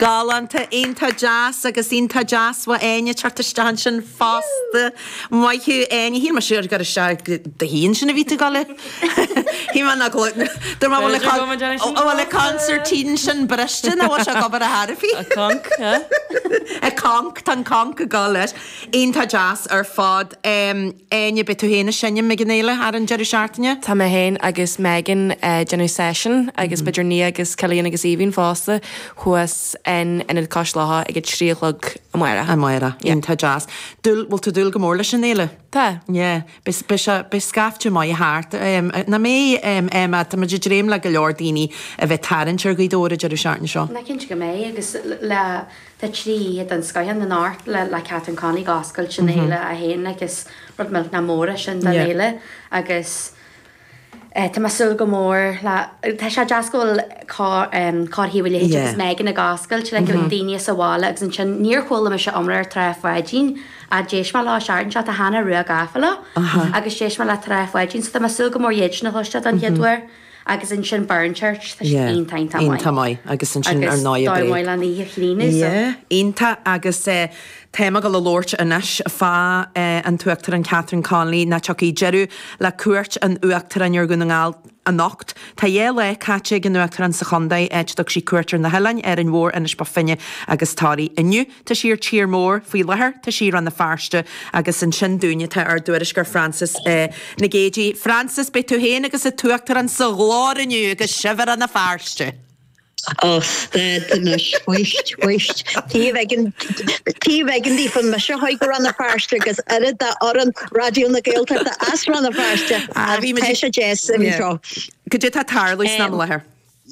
Galánta, iontach deas agus iontach deas bhfuil Áine ag teacht isteach ansin fosta. Maith thú Áine, shíl mé sure gur isteach do thí ansin a bhí tú ag dul le? Shíl mé nach bhfuil, dúirt mé bhfuil an B'fhéidir go mbeidh Áine sin bhfuil an fosta. consairtín sin briste nó bhfuil sé ag obair a thairfí? A conch, huh? A conch, tá an conch ag dul leis. Iontach deas ar fad. Áine, Beidh tú féin ag seinm ag an fhéile ar an deireadh seachtaine? Tá mé féin agus Megan ag déanamh seisiún agus b'fhéidir Nia agus Cillian agus Aoibhín fosta thuas in Ionad Cois Locha ag a trí a chlog amáireach. Amáireach, iontach deas. Dúil, bhfuil tú ag dúil go mór leis an fhéile? Tá. Yeah, beidh, beidh sé, beidh scaifte maith thart. Nach mbeidh, Emma, táimid ag dréim le go leor daoine a bheith ag tarraingt ar Ghaoth Dobhair an deireadh seachtaine seo. Tá mé cinnte go mbeidh agus le. Tá trí oíche den scoith ann anocht le Catherine Connolly ag oscailt an fhéile 1 agus rud millteanach mór é sin don fhéile agus tá mé ag súil go mór le tá sé deas go bhfuil cár thaobh a leithéid agus Megan ag oscailt le go bhfuil daoine as sa bhaile agus ansin níor chuala mise iomrá ar Trá Pháidín a d'éist mé leo an tseachtain seo tá Hannah Rua gafa leo agus d'éist mé le Trá Pháidín so tá mé ag súil go mór iad sin a chloisteáil don chéad uair. agus ansin Burnchurch tá siad iontach iontach maith iontach maith agus ansin ar ndóigh Bréag an oíche chlíneadh so yeah iontach agus tá mé ag dul a labhairt anois fá an tUachtarán Catherine Connolly nó tiocfaidh deireadh le cuairt an Uachtaráin ar Dhún na nGall anocht tá dhá lá caite ag an Uachtarán sa chontae áit a dtug sí cuairt ar na hoileáin Árainn Mhór Inis Bó Finne agus Toraigh inniu. Tá sí ar tír mór faoi láthair, tá sí i Rann na Feirste agus ansin dúinne tá ár dtuairisceoir Frances Nic Géadaigh. Frances, beidh tú féin agus an tUachtarán sa ghlóir inniu agus sibh i Rann na Feirste! Ó stad anois, fuist, fuist, taobh eigin, taobh eigin di fan mise a theacht go Rann na Feirste agus oiread de fhoireann Raidió na Gaeltachta as Rann na Feirste ach tá sé deas a bheith anseo. Cad é tá tarlú ansin faoi láthair?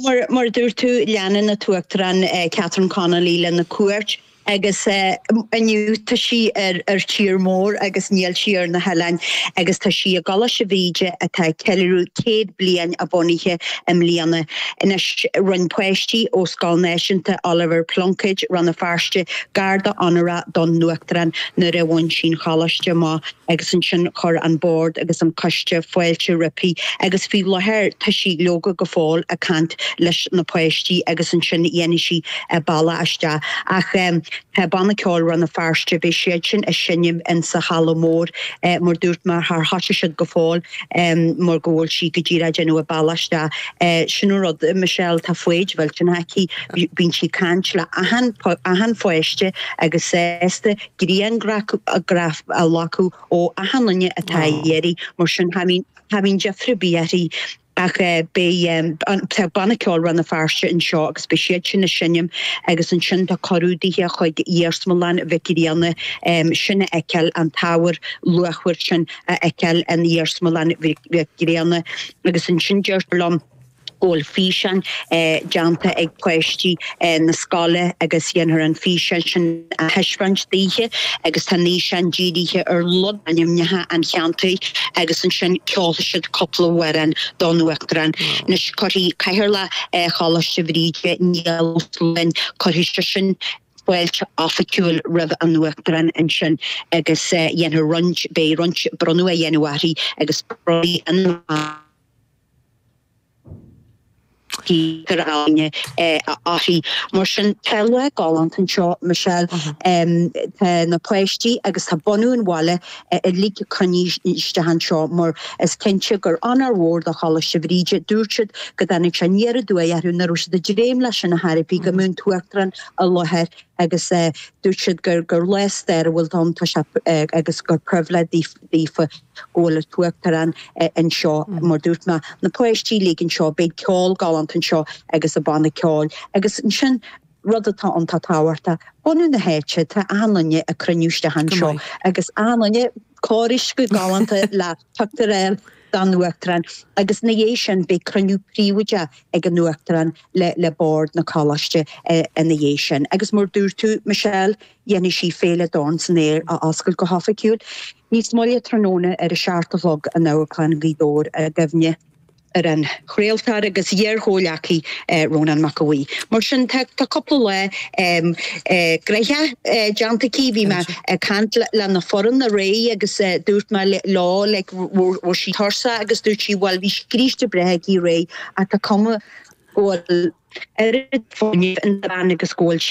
Mar a dúirt tú, leanann an tUachtarán Catherine Connolly lena cuairt agus inniu tá sí ar tír mór agus níl sí ar na hoileáin agus tá sí i gColáiste Bhríde atá ag ceiliúradh céad bliain a bhunaithe i mbliana. Anois rinn páistí ó Scoil Náisiúnta Oliver Plunkett, Rann na Feirste, garda onórach don Uachtarán nuair a bhain sí an choláiste amach. agus ansin chuir an Bord agus an Coiste fáilte roimpi, agus faoi láthair tá sí, leoga, go fóill ag caint leis na páistí agus ansin dhéanfaidh sí a bealach isteach. Ach tá Banna Ceoil Rann na Feirste, beidh siad sin ag seinm in sa halla mór, mar dúirt mé, char thosaigh siad go fóill mar go bhfuil sí go díreach ag déanamh a bealach isteach. Sin an rud, Michelle, tá foighid mhillteanach aici, bíonn sí ag caint le achan, achan pháiste agus sásta. griangraf a ghlacadh ó achan duine atá ag iarraidh, mar sin cha mbíonn deifre ar bith uirthi ach beidh, tá Banna Ceoil Rann na Feirste anseo agus beidh siad sin ag seinm agus ansin tá cuireadh daoithe chuig Iarsmalann Mhic Grianna sin a fheiceáil, an t-ábhar luachmhar sin a fheiceáil in Iarsmalann Mhic Grianna agus ansin deirtear liom. go bhfuil físeán déanta ag páistí na scoile agus dhéanfar an físeán sin a thaispeáint daoithe agus tá an fhíseán dírithe ar logainmneacha an cheantair agus ansin ceolfaidh siad cúpla amhrán don Uachtarán. Anois cuirfidh Cathaoirleach Choláiste Bhríde, Niall Ó Sluáin, cuirfidh seisean fáilte oifigiúil roimh an Uachtarán ansin agus dhéanfar roinnt, beidh roinnt bronnadh á dhéanamh uirthi agus bronnfaidh an. Peter a'inne uirthi. Mar sin, tá lá galánta anseo, Michelle. Tá na páistí agus tá bunadh an bhaile uilig ag cruinniú isteach anseo mar is cinnte gur onóir mhór do Choláiste Bhríde. Dúirt siad go dtáinig sé aniar aduaidh orthu nach raibh siad ag dréim leis ar chor ar bith go mbeadh an tUachtarán i láthair agus dúirt siad gur lá stairiúil ann agus gur pribhléid daofa go bhfuil an tUachtarán anseo. Mar dúirt mé, na páistí uilig anseo, beidh ceol galánta anseo agus an banna ceoil. Agus ansin, rud atá iontach tábhachtach, bunadh na háite, tá achan-duine ag cruinniú isteach anseo agus achan-duine cóiriste go galánta le tugtar air don Uachtarán. Agus ina dhiaidh sin, beidh cruinniú príobháideach ag an Uachtarán le Bord na Coláiste ina dhiaidh sin. Agus mar dúirt tú, Michelle, dhéanfaidh sí Féile Dorn san Aer a oscailt go hoifigiúil. Níos moille tráthnóna ar a seacht a chlog in Amharclann Ghaoth Dobhair i gcuimhne ar an chraoltóir agus iar-chomhleacaí Rónán Mac Aodha Bhuí. Mar sin, tá cúpla lá gnaitheach déanta aici. Bhí mé ag caint lena foireann aréir agus dúirt mé leo like an bhfuil sí tuirseach agus dúirt sí bhuel bhí scríste breá aici aréir ach tá cuma go bhfuil oiread fuinnimh insa bhean agus go bhfuil sí